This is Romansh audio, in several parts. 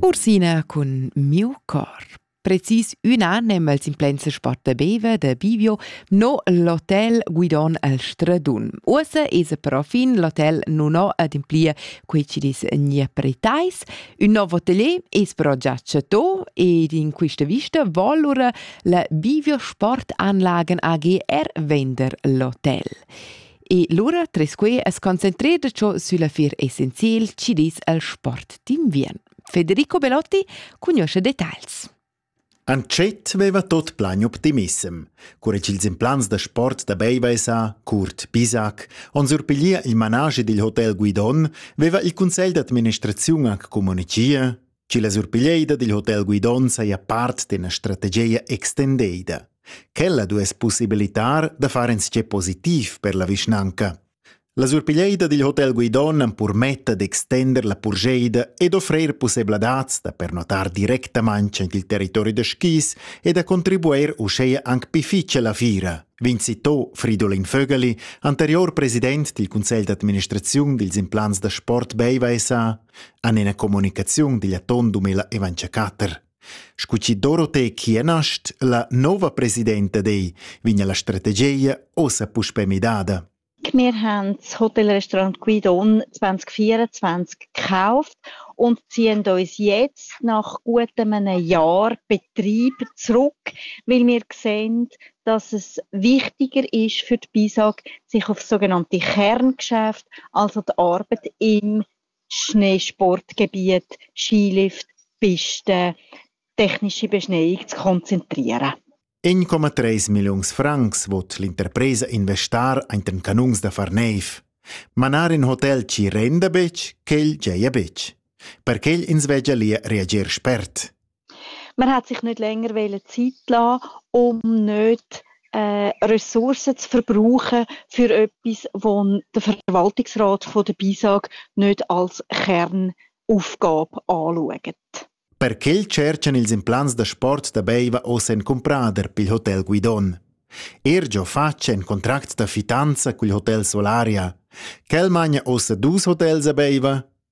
Ursina cun miu cor. Precis un an em el simplense sport beve de Bivio no l'hotel Guidon al Stradun. Uossa esa però fin l'hotel non ho ademplir quei ci dis gne pretais. Un nov hotelier es però già chato ed in questa vista volura la Bivio Sportanlagen AG er vender l'hotel. E lura Tresque es concentreda ciò sülla fier essenziel chi dis al sport d'inviern. Federico Belotti cugnuoscha details. Antschet veva tot plan optimissem. Cura ch'ils implants da sport da Beivaisa, Kurt Bisac, on surpiglia il manage dil hotel Guidon, veva il Consell d'administraziun anc communichia Chi la surpiglieida dil hotel Guidon saja part d'ena strategia extendeida. Quella duess possibilitar da far insce positiv per la vischnanca. La surpiglieida dil hotel Guidon am permetta d'extender la purgeida ed offrir possibladats da pernotar directamain il territori da skis e da contribuir uscheia anc pi fitg la fira, vincitò Fridolin Vögeli, anterior president dil Cunsegl d'administraziun dils implants da sport Beiva SA, han ina communicaziun digl atun 2024. Scu chi Dorothee Chienast, la nova presidenta dei, vigna la strategia ossa puspe midada. Wir haben das Hotelrestaurant Guidon 2024 gekauft und ziehen uns jetzt nach gut einem Jahr Betrieb zurück, weil wir sehen, dass es wichtiger ist für die BISAG, sich auf sogenannte Kerngeschäfte, also die Arbeit im Schneesport, Gebiet, Skilift, Piste, tecnische Beschneiung zu konzentrieren. 1,3 milliuns francs vot l'interpresa investar ainten canuns da far neiv. Manar in hotel ci renda betg, quel geia betg. Per quel ins vegia lia reager spert. Man hat sich nicht länger wollen Zeit lassen, um nicht äh, Ressourcen zu verbrauchen für etwas, wo der Verwaltungsrat von der BISAG nicht als Kernaufgabe anschaut. Perché cerchan ils implants da sport da Beiva oz en cumprader pil Hotel Guidon. Ergio face en contract da fitanza cul Hotel Solaria. Quel magna ossa dus hotels a Beiva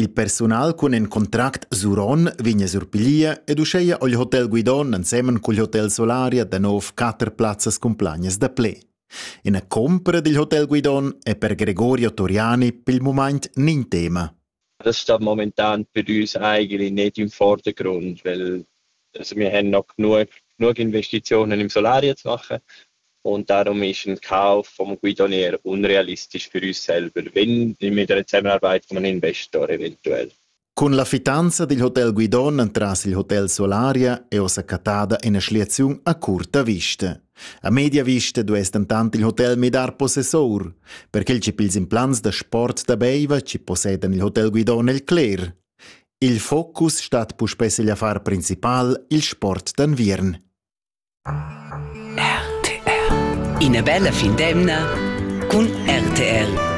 Il persunal cun in contract suron vegn a surpiglier ed uscheia ho il hotel Guidon ensemen cul hotel Solaria da nov quatter plazzas cumplagnas da pled. Ina compra dil hotel Guidon è per Gregorio Toriani pel mumaint nin tema. Das sta momentan per us eigentlich nicht im Vordergrund, weil Also wir haben noch genug, genug Investitionen im Solar jetzt machen und darum ist ein Kauf vom Guidonier unrealistisch für uns selber, wenn mit der Zusammenarbeit von einem Investor eventuell. Cun la fitanza dil hotel Guidon entras il hotel Solaria è ossa cattada ina schliaziun a curta vista. A media vista duess dentant il hotel midar possessor, perché il ci pils implants da sport da Beiva ci possedan il hotel Guidon el cler, Il focus stat puspè sigl affar principal, il sport d'enviern. RTR. Ina bella fin d'emna cun RTR.